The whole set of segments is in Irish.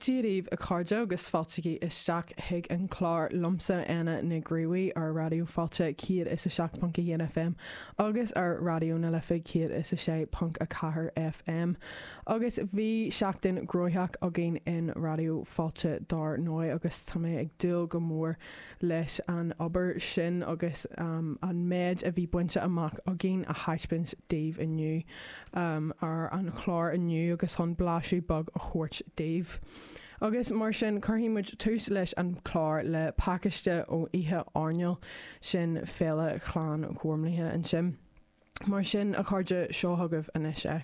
Dia daoibh, a chairde, agus fáiltígí isteach chuig an chlár liomsa, Éanna Nig Fhraoigh, ar Raidió Fáilte 107.1 FM agus ar Raidió na Life 106.4 FM. Agus bhí seachtain ghnóthach againn in Raidió Fáilte dár ndóigh agus tá mé ag dúil go mór leis an obair sin agus an méid a bhí bainte amach againn a thaispeáint daoibh inniu ar an chlár inniu agus chun blaiseadh beag a thabhairt daoibh. Agus mar sin, cuirfidh muid tús leis an chlár le pacáiste ó oíche áirneáil sin Féile Ghleann Ghormlaithe ansin. Mar sin, a chairde, seo chugaibh anois é.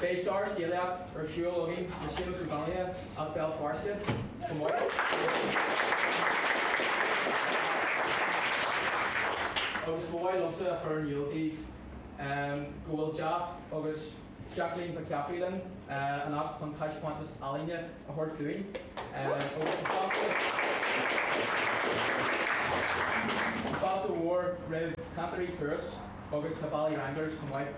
Beidh sár scéalaíocht ar siúl againn le Séamus Ó Donnaile as Béal Feirste chomh maith agus ba mhaith liomsa a chur in iúl daoibh go bhfuil Jeff agus Jacqueline Mhic Chathmhaoil linn anocht chun taispeántas ealaíne a thabhairt dúinn agus an fáilte an fáilte mhór roimh Chantairí Turas. agus na Bally Wranglers chomh maith.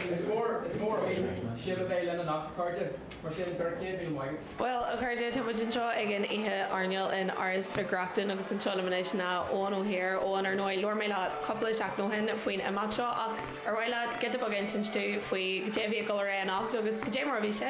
Is mór againn sibh a bheith linn anocht, a chairde, mar sin go raibh céad míle maith. Bhuel, a chairde, tá muid anseo ag an oíche airneáil in Áras Mhic Reachtain agus anseo liom anois ná Eoghan Ó hÍr. Eoghan, ar ndóigh, labhair mé leat cúpla seachtain ó shin faoin imeacht seo ach ar mhaith leat giota beag a insint dúinn faoi cad é a bhí ag dul ar aghaidh anocht agus cad é mar a bhí sé?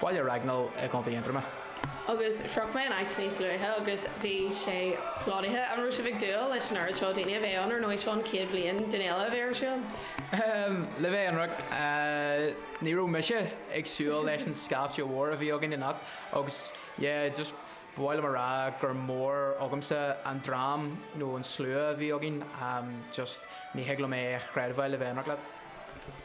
Bhaile Raghnaill i gContae Aontroma. Agus shroich mé an áit níos luaithe agus bhí sé plódaithe. An raibh sibh ag dúil leis an oiread seo daoine a bheith ann? Ar ndóigh, seo an chéad bhliain den fhéile a bheith ar siúl ann. Le bheith ionraic, ní raibh mise ag súil leis an scaifte mhór a bhí againn anocht agus, yeah, just ba mhaith liom a rá gur mór agamsa an dream nó an slua a bhí againn. Just, ní thig liom é a chreidbheáil, le bheith ionraic leat.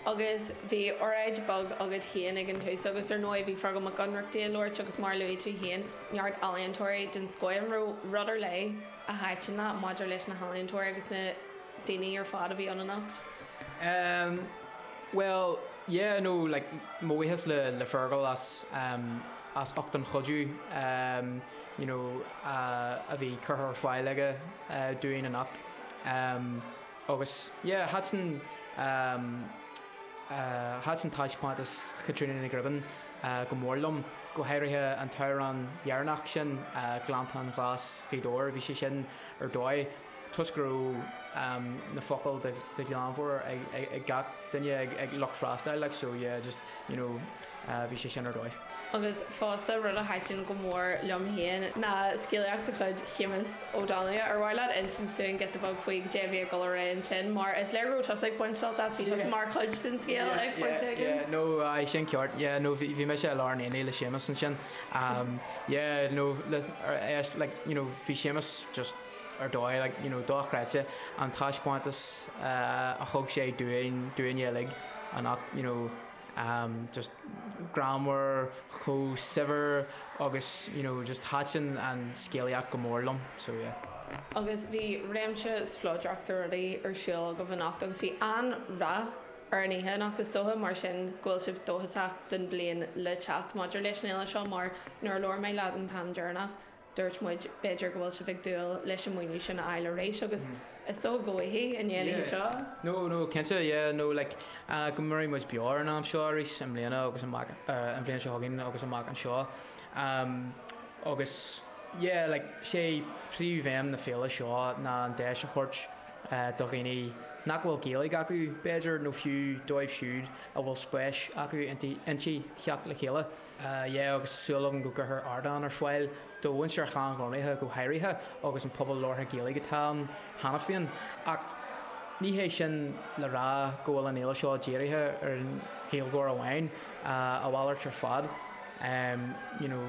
Agus bhí oráid bheag agat féin ag an tús agus ar ndóigh bhí Feargal Mac Ionnrachtaigh ag labhairt agus mar a luaigh tú féin, neart ealaíontóirí den scoth. An raibh rud ar leith a thaitin leat maidir leis na healaíontóirí agus na daoine ar fad a bhí ann anocht? Em, bhuel, yeah, no, like, mo bhuíochas le, le Feargal as em, as ucht an chuidiú em, you know, a, a bhí curtha ar fáil aige eh, dúinn anocht. Em. Agus yeah, thaitin, thaitin taispeántas Chaitríona Ní Ghribín go mór liom, go háirithe an t-amhrán dheireanach sin, Gleanntáin Ghlas Ghaoth Dobhair, bhí sé sin ar dóigh, toisc go raibh na focail de ghlanmheabhair ag gach duine, ag lucht freastail, like so yeah, just. you know bhí sé sin ar dóigh. Agus fosta, rud a thaitin go mór liom féin ná scéalaíocht de chuid Shéamus Ó Donnghaile. Ar mhaith leat insint dúinn giota beag faoi cad é a bhí ag dul ar aghaidh ansin, mar is léir go raibh tusa ag baint sult as, bhí tusa mar chuid den scéal ag pointe éigin? Yeah, yeah, yeah, no, aye, sin ceart, yeah, no, bhí, bhí mise i lár an aonaigh le Séamus ansin. Um, yeah, no, listen, ar, like, you know, bhí Séamus just ar dóigh, like, you know, dochreidte, an taispeántas a thug sé dúinn, dúinne uilig, anocht, you know, um, just greannmhar, chomh saibhir agus, you know, just thaitin an scéalaíocht go mór liom, so yeah. Agus bhí réimse spleodrach de rudaí ar siúl agaibh anocht agus bhí an-rath ar an oíche anocht, is dócha mar sin go bhfuil sibh dóchasach don bhliain le teacht maidir leis an fhéile seo mar nuair a labhair mé leat an t-am deireanach, Dúirt muid, b'fhéidir go bhfuil sibh ag dúil leis an maoiniú sin a fháil arís agus is dóigh go bhfaighfidh, i ndiaidh an seo. No, no, cinnte, yeah, no, like, uh, go mairfidh muid beo ar an am seo arís i mbliana agus, uh, an bhliain seo chugainn agus amach anseo. Um, agus, yeah, like, sé príomhbhéim na féile seo ná an deis a thabhairt uh, do dhaoine nach bhfuil Gaeilge acu b'fhéidir nó fiú dóibh siúd a bhfuil spéis acu inti theacht le chéile. yeah agus tá súil agam go gcuirfear ardán ar fáil do mhuintir Ghleann Ghormlaithe go háirithe agus an pobal labhartha Gaeilge atá ann cheana féin ach ní hé sin le rá go bhfuil an fhéile seo dírithe ar an Ghaeilgeoir amháin, a mhalairt ar fad. you know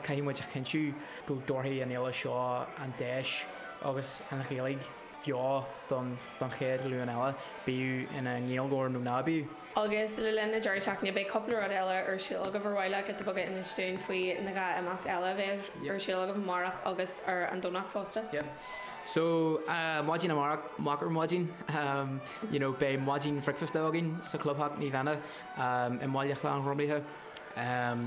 caithfidh muid a chinntiú go dtabharfaidh an fhéile seo an deis agus an Ghaeilge. bheo don chéad ghlúin eile, bíodh ina nGaeilgeoir nó ná bíodh. Agus le linn an deireadh seachtaine beidh cúpla rud eile ar siúl agaibh ar mhaith leat giota beag a insint dúinn faoi na dhá imeacht eile a bheidh ar siúl agaibh amárach agus ar an Domhnach fosta. Yep so maidin amárach, moch ar maidin, you know beidh maidin bhricfeasta againn sa chlubtheach Naomh Éanna i mbaile Ghleann Ghormlaithe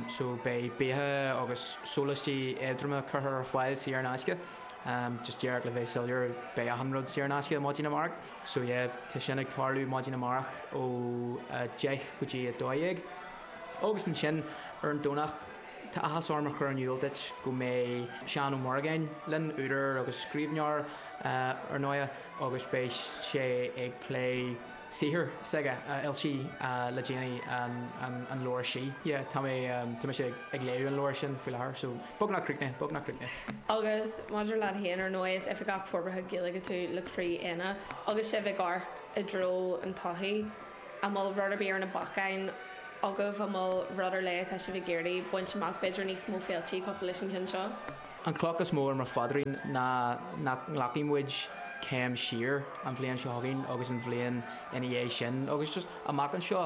so beidh bia agus sólaistí éadroma curtha ar fáil saor in aisce. am, just díreach le bheith soiléir, beidh achan rud saor in aisce maidin amárach. So yeah, tá sin ag tarlú maidin amárach ó a deich go dtí a dó dhéag. Agus ansin ar an Domhnach, tá áthas orm a chur in iúl duit go mbeidh Seán Ó Muireagáin linn, údar agus scríbhneoir, ar ndóighe, agus beidh sé ag plé, saothar s'aige a fhoilsigh le déanaí, an leabhar Sí. Yeah, tá mé, tá mise ag léamh an leabhair sin faoi láthair, so, beagnach críochnaithe, beagnach críochnaithe. Agus maidir leat féin, ar ndóigh, is Oifigeach Forbartha Gaeilge tú le Croí Éanna, agus sibh ag amharc i dtreo an todhchaí, an bhfuil rud ar bith ar na bacáin agaibh, an bhfuil rud ar leith atá sibh ag iarraidh baint amach, b'fhéidir níos mó féiltí cosúil leis an gceann seo? An cloch is mó ar mo phaidrín ná nach nglacfaidh muid céim siar an bhliain seo chugainn agus an bhliain ina dhiaidh sin agus just amach anseo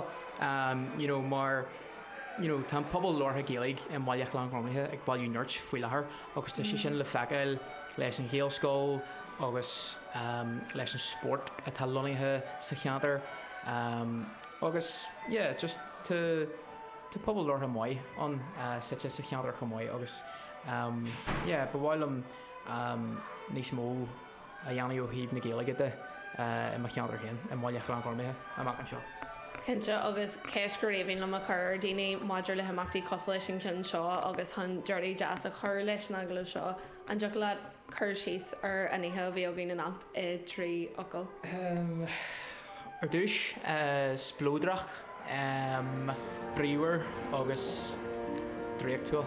you know mar you know tá an pobal labhartha Gaeilge i mBaile Ghleann Ghormlaithe ag bailiú nirt faoi láthair agus tá sé sin le feiceáil leis an Ghaelscoil agus leis an spórt atá lonnaithe sa cheantar agus yeah just tá pobal labhartha maith ann suite sa cheantar chomh maith agus yeah ba mhaith liom níos mó a dhéanamh ó thaobh na Gaeilge de i mo cheantar féin, i mBaile Ghleann Ghormlaithe amach anseo. Cinnte, agus ceist gur aoibhinn liom a chur ar dhaoine maidir le himeachtaí cosúil leis an gceann seo agus chun deireadh deas a chur leis an agallamh seo, an dtiocfadh leat cur síos ar an oíche a bhí againn anocht i dtrí fhocal? Ar dtús, spleodrach, bríomhar agus draíochtúil.